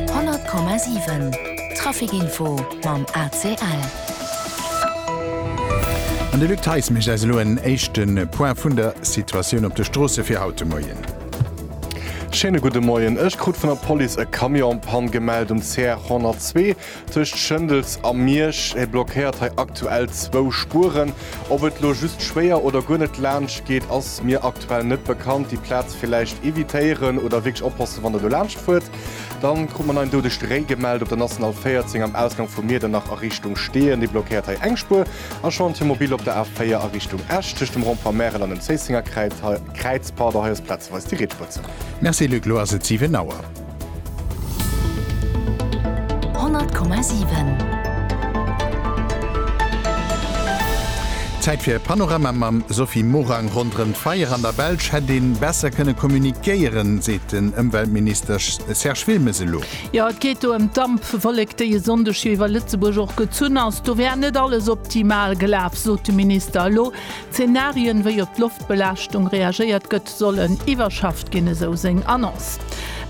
100,7 Traficinfo mam ACL. An de Luc Theis mécht eis elo en éischte Point vun der Situatioun op de Stroosse fir haut de Moien. Schéine gudde Moien. Ech krut vun der Police e Camion en Panne gemellt um CR 102. Tëscht Schëndels a Miersch blockéiert hei aktuell zwou Spueren. Ob et lo just schwéier oder guer net laanscht geet ass mir aktuell net bekannt. Déi Plaz villäicht evitéieren oder wierklech oppassen wann der do laanscht fuert. Dann krut mer en doudegt Réi gemellt op der National 14 am Ausgang vu Miedernach a Richtung Steeën. Dee blockéiert hei eng Spuer. A Chantier mobil op der A4 a Richtung Esch tëscht dem Rond-point Märel an dem Zéissenger Kräiz. Hei ass plazeweis déi riets Spuer zou. Merci Luc, lo ass et 7 Auer. Honnert Komma siwen. Zäit fir e Panorama mam Sophie Morang. Ronderëm d'Feier an der Belsch hätt ee besser kënne communiquéieren, seet den Ëmweltminister Serge Wilmes elo. Jo, et geet do ëm d'Dampwollek, déi e Sonndeg jo iwwer Lëtzebuerg och gezunn ass. Do wär net alles optimal gelaf, sot de Minister. Elo Zenarien, wéi op d'Loftbelaaschtung reagéiert gëtt. Sollen iwwerschafft ginn, esou seng Annonce.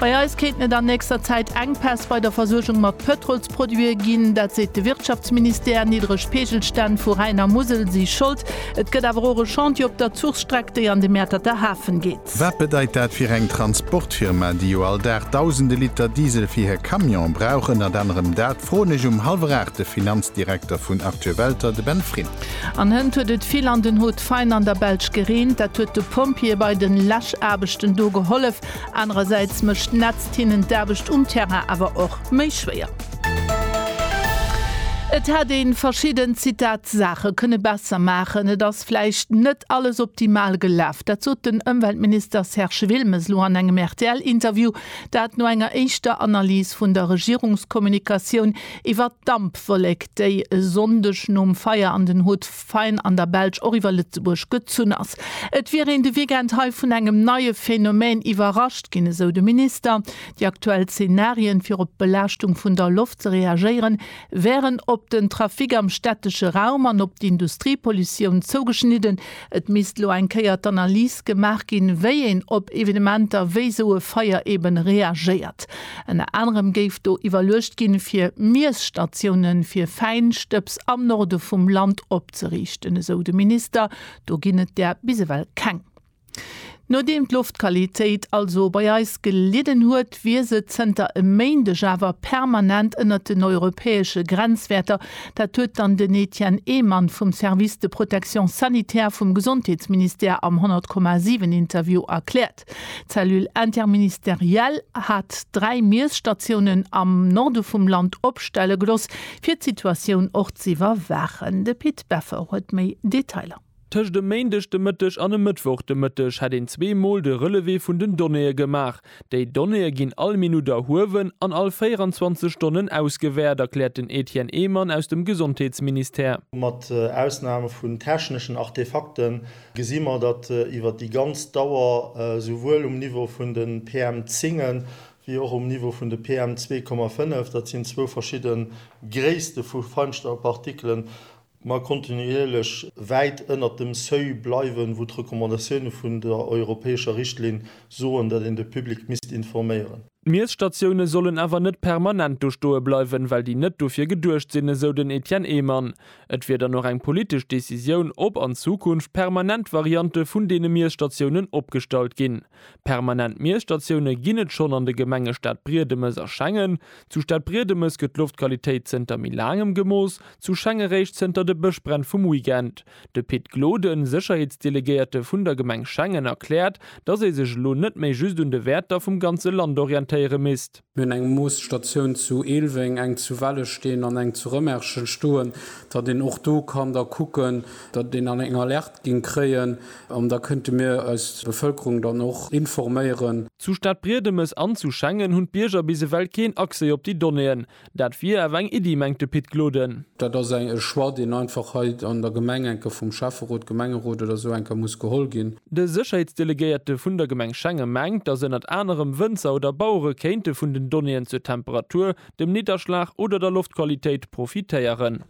Bei eis kéinten et an nächster Zäit Enkpäss bei der Versuergung mat Pëtrolsproduite ginn, dat seet de Wirtschaftsministère. Niddreg Peegelstänn vu Rhäin a Musel si Schold. Et gëtt awer och e Chantier op der Zuchstreck, déi an de Mäerterter Hafen geet. Wat bedeit dat fir eng Transportfirma, déi jo all Dag dausende Liter Diesel fir hir Camionen brauch? Ënnert anerem dat froen ech um hallwer aacht de Finanzdirekter vun Actu Welter, de Ben Frin. An hënt huet et vill an den Hot fein an der Belsch gereent. Dat huet de Pompjeeë bei den Läschaarbechten do gehollef. Anerersäits mécht d'Nätzt hinnen d'Aarbecht um Terrain awer och méi schwéier. Et hätt ee verschidden Zitat Saache kënne besser maachen. Et ass vläicht net alles optimal gelaf. Dat sot den Ëmweltminister Serge Wilmes elo an engem RTL-Interview. Dat no enger éischter Analys vun der Regierungskommunikatioun, Iwwer d'Dampwollek, déi e Sonndeg nom Feier an den Hauts-de-Faine an der Belsch och iwwer Lëtzebuerg gezunn ass. Et wier een de Weekend hei vun engem neie Phänomen iwwerrascht ginn, esou de Minister. Déi aktuell Zenarien, fir op d'Belaaschtung vun der Loft ze reagéieren, wären op den Trafic am stättesche Raum an op d'Industriepollutioun zougeschnidden, Et misst elo eng Kéier d'Analys gemaach ginn, wéi een op Evenementer wéi esou e Feier eben reagéiert. Ënner anerem géif do iwwerluecht ginn, fir Miesstatioune fir Fäinstëbs am Norde vum Land opzeriichten, esou de Minister. Do ginn et där bis ewell keng. Nodeem d'Loftqualitéit also bei eis gelidden huet, wier se zënter e Méindeg awer permanent ënnert den europäesche Grenzwäerter. Dat huet dann den Etienne Ehmann vum Service de protection sanitaire vum Gesondheetsministère am 100,7 Interview erkläert. D'Cellule interministérielle hat dräi Miesstatiounen am Norde vum Land opstelle gelooss, fir d'Situatioun och z'iwwerwaachen. De Pit Beffer huet méi Detailer. Tëscht e Méindeg de Mëtteg an e Mëttwoch de Mëtteg hätt een zwee Mol de Relevé vun den Donnéeë gemaach. Déi Donnéeë ginn all Minutt erhuewen an all 24 Stonnen ausgewäert, erkläert den Etienne Ehmann aus dem Gesondheetsministère. Mat Ausnam vun techneschen Artefakte gesi mer, datt iwwer déi ganz Dauer esouwuel um Niveau vun de PM10 wéi och um Niveau vun de PM2,5, dat sinn zwou verschidde Gréisste vu Feinstaubpartikelen, mer kontinuierlech wäit ënnert dem Seuil bleiwen, wou d'Recommandatioune vun der europäescher Richtlinn soen, datt een de Public misst informéieren. D'Miesstatioune sollen awer net permanent do stoe bleiwen, well déi net dofir geduecht sinn, esou den Etienne Ehmann. Et wier dann och eng politesch Decisioun, ob an Zukunft permanent Variante vun deene Miesstatiounen opgestallt ginn. Permanent Miesstatioune ginn et schonn an de Gemenge Stadbriedemes a Schengen. Zu Stadbriedemes gëtt d'Loftqualitéit zënter méi laangem gemooss, zu Schengen réischt zënter de Bëschbränn vum Weekend. De Pit Gloden, Sécherheetsdelegéierte vun der Gemeng Schengen, erkläert, datt ee sech elo net méi just un de Wäerter vum ganze Land orientéiere misst. Mir hunn eng Moosstatioun zu Eelweng, eng zu Wellesteen an eng zu Rëmerschen stoen, datt een och do kann da kucken, datt een eng Alerte géing kréien an da kënnte mir eis Bevëlkerung dann och informéieren. Zu Stadbriedemes an zu Schengen hunn d'Bierger bis ewell keen Accès op déi Donnéeën. Dat wier awer eng Iddi, mengt de Pit Gloden. Dat ass e Choix, deen einfach hei an der Gemeng enke vum Schäfferot, Gemengerot oder esou enke muss geholl ginn. De Sécherheetsdelegéierte vun der Gemeng Schengen mengt, datt ënnert anerem Wënzer oder Bauere kéinte vun den Donnéeën zur Temperatur, dem Nidderschlag oder der Loftqualitéit profitéieren.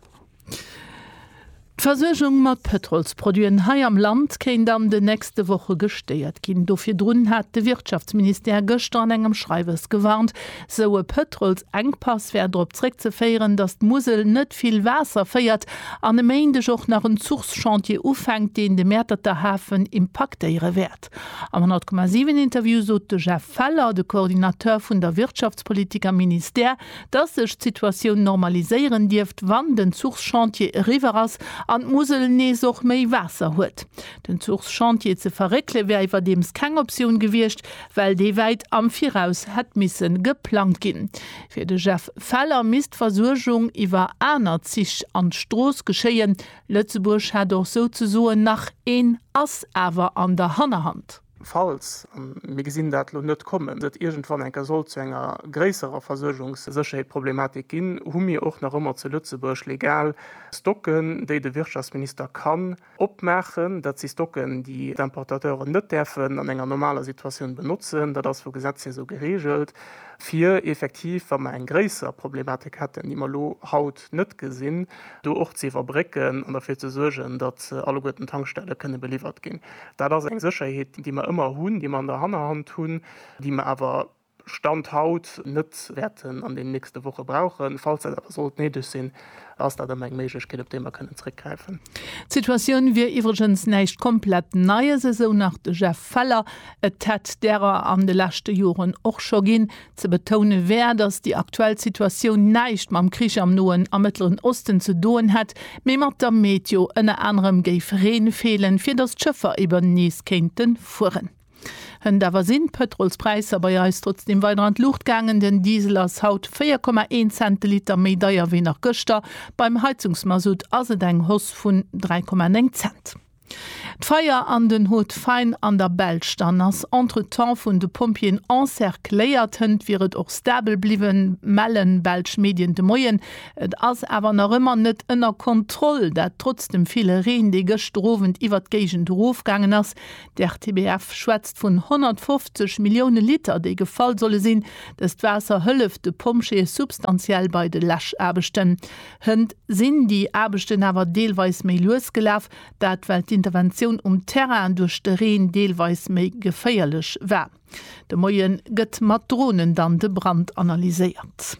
D'Versuergung mat Pëtrolsproduiten hei am Land kéint an den nächste Woche gestéiert ginn. Do virdrun hat de Wirtschaftsministère gëschter an engem Schreiwes gewarnt. Sou e Pëtrolsengpass wär drop zréckzeféieren, datt d'Musel net vill Waasser féiert an e Méindeg och nach en Zuchschantier ufänkt, deen de Mäerterter Hafen impaktéiere wäert. Am 100,7 Interview sot de Jeff Feller, de Coordinateur vun der Wirtschaftspolitik am Ministère, datt sech d'Situatioun normaliséieren dierft, wann den Zuchschantier eriwwer ass an d'Musel nees och méi Waasser huet. Den Zuchschantier ze verréckele wär iwwerdeems keng Optioun gewiescht, well dee wäit am Viraus hätt misse geplangt ginn. Fir de Jeff Feller misst d'Versuergung iwwer aner Zich an d'Strooss geschéien. Lëtzebuerg hätt och souzesoen nach een Ass awer an der Hannerhand. Falls, a mir gesinn dat elo net kommen, et iergendwann eng Kéier sollt zu enger gréisserer Versuergungssécherheetproblematik ginn, hu mir och nach ëmmer zu Lëtzebuerg legal Stocken, déi de Wirtschaftsminister kann, Opmaachen, dat si Stocken, déi d'Importateuren net däerfen an enger normaler Situatioun benotzen, dat ass vu Gesetz hir esou gereegelt, fir effektiv, wa mer eng gréisser Problematik hätten, déi mer elo haut net gesinn, do och ze iwwerbrécken an derfir ze suergen, datt alleguerten d'Tankstelle kënne beliwwert ginn. Dat ass eng Sécherheet, déi mer ëmmer hunn, déi mer an der Hannerhand hunn, déi mer awer Stand haut, net wäerten an den nächste Woche brauchen. Falls dat awer sollt néideg sinn, ass dat ëmmer eng Méiglechkeet, op déi mer kënnen zréckgräifen. D'Situatioun wier iwwregens näischt komplett Neies, esou nach de Jeff Feller. Et hätt därer an de leschte Joren och scho ginn. Ze betoune wär, datt déi aktuell Situatioun näischt mam Krich am Noen a Mëttleren Osten ze doen hätt, mee mat der Meteo. Ënner anerem géif Reen feelen, fir datt d'Schëffer eeben nees kéinte fueren. Hënt awer sinn d'Pëtrolspräisser bei eis trotzdeem weider an d'Luucht gaangen. Den Diesel ass haut 4,1 Cent de Liter méi deier wéi nach gëschter. Beim Heizungsmasutt ass et eng Hoss vun 3,9 Cent. D'Feier an den Hauts-de-Faine an der Belsch. Dann ass entretemps vun de Pompjeeën encercléiert. Hënt wier et och stabel bliwwen, mellen belsch Medien de Moien. Et ass awer nach ëmmer net ënner Kontroll, dat trotz dem ville Reen, dee gëschter Owend iwwert d'Géigend erofgaangen ass. D'RTBF schwätzt vun 150 Millioune Liter, déi gefall solle sinn. Dëst Waasser hëlleft de Pompjeeë substantiell bei de Läschaarbechten. Hënt sinn déi Aarbechten awer deelweis méi lues gelaf, dat well d'Interventioun um Terrain duerch de Reen deelweis méi geféierlech war. De Moie gëtt mat Dronen dann de Brand analyséiert.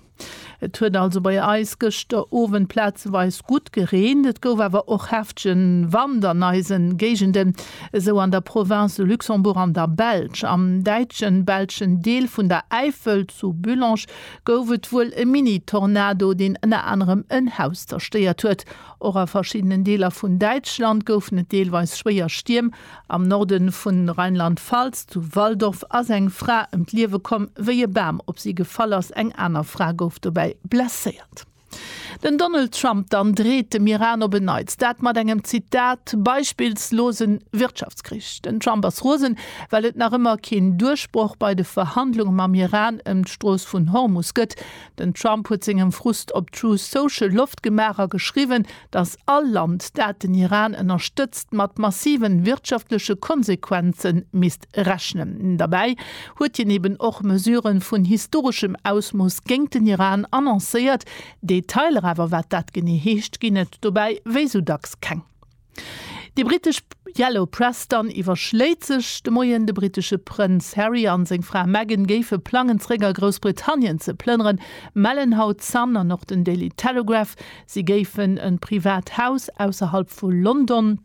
Et huet also bei eis gëschter Owend plazeweis gutt gereent, et gouf awer och heftegen Wand an eisen Géigenden, esou an der Province de Luxembourg an der Belsch. Am däitschen, belschen Deel vun der Äifel, zu Bullange, gouf et wuel e Mini-Tornado, deen ënner anerem en Haus zerstéiert huet. Och a verschiddenen Deeler vun Däitschland goufen et deelweis schwéier Stierm. Am Norde vun Rheinland-Pfalz, zu Walldorf, ass eng Fra ëm d'Liewe komm, wéi e Bam op si gefall ass. Eng aner Fra gouf dobäi blesséiert. Den Donald Trump dann dreet dem Iran op en Neits, dat mat engem, Zitat, beispillslose Wirtschaftskrich. Den Trump ass rosen, well et nach ëmmer keen Duerchbroch bei de Verhandlunge mam Iran ëm d'Strooss vun Hormus gëtt. Den Trump huet sengem Frust op Truth Social Loft gemaach a geschriwwen, dass all Land, dat den Iran ënnerstëtzt, mat massive wirtschaftleche Konsequenze misst rechnen. Derbäi huet hien eben och Mesure vun historeschem Ausmooss géint den Iran annoncéiert. Detailer awer, wat dat genee heescht, ginn et dobäi wéi sou dacks keng. Déi britesch Yellow Press dann iwwerschléit sech de Moien, de britesche Prënz Harry an seng Fra Meghan géife plangen, zeréck a Groussbritannien ze plënneren, mellen haut Sun an och den Daily Telegraph. Si géifen en privat Haus ausserhalb vu London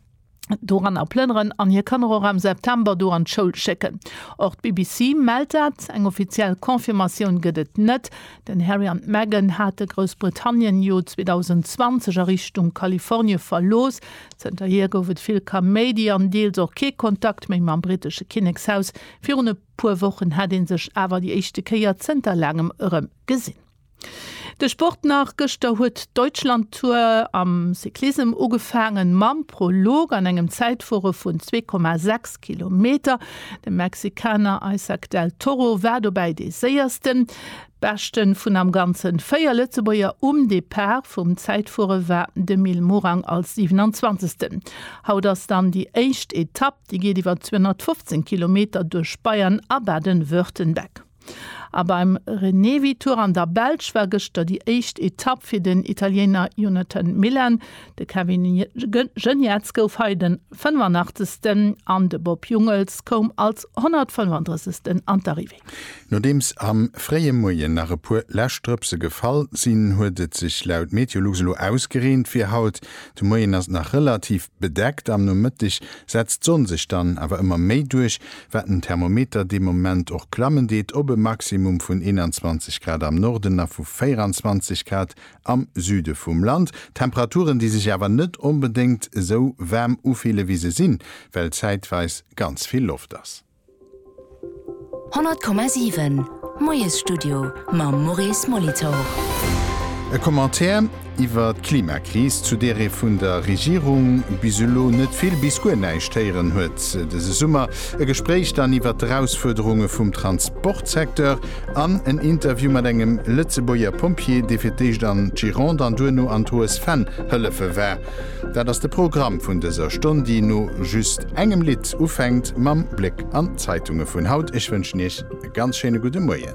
doranner plënneren an hir Kanner och am September do an d'Schoul schécken. Och d'BBC mellt dat. Eng offiziell Confirmatioun gëtt et net. Den Harry an d'Meghan hate Groussbritannien jo 2020 a Richtung Kalifornie verlooss. Zënterhier gouf et vill Kaméidi an deels och kee Kontakt méi mam brittesche Kinnekshaus. Virun e puer Wochen hätt ee sech awer déi éischte Kéier zënter laangem erëm gesinn. De Sport nach, Gëschter huet d'Deutschlandtour am Cyclissem ugefaangen, mam Prolog an engem Zäitfuere vun 2,6 Kilometer. De Mexikaner Isaac del Toro war dobäi dee séiersten. Beschte vun am Ganze véier Lëtzebuerger um Depart vum Zäitfuere war de Mil Morang als 27. Haut ass dann déi éischt Etapp. Déi geet iwwer 215 Kilometer duerch Bayern a Baden-Württemberg. A beim Renewi Tour an der Belsch war gëschter déi éischt Etapp fir den Italiener Jonathan Milan. De Kevin Geniets gouf hei den 85. an de Bob Jungels koum als 135. an d'Arrivée. Nodeems am fréie Moien nach e puer lescht Drëpse gefall sinn, huet et sech laut Meteolux elo ausgereent fir haut de Moien. Ass nach relativ Bedeckt. Am Nomëtteg setzt d'Sonn sech dann awer ëmmer méi duerch, wat den Thermometer dee Moment och klammen deet op e Maximum vun 21 Grad am Norden a vu 24 Grad am Süde vum Land. Temperaturen, déi sech awer net onbedéngt esou waarm ufille wéi se sinn, well zäitweis ganz vill Loft ass. 100,7, Moiesstudio mam Maurice Molitor. E Commentaire iwwer d'Klimakris, zu där ee vun der Regierung bis elo net vill bis guer näischt héieren huet dëse Summer. E Gespréich dann iwwer d'Erausfuerderunge vum Transportsecteur an en Interview mat engem Lëtzebuerger Pompjee, dee fir d'éischt an d'Gironde an duerno an d'Hoes Venn hëllefe war. Dat ass de Programm vun dëser Stonn, déi no just engem Lidd ufänkt mam Bléck an d'Zeitunge vun haut. Ech wënschen Iech e ganz schéine gudde Moien.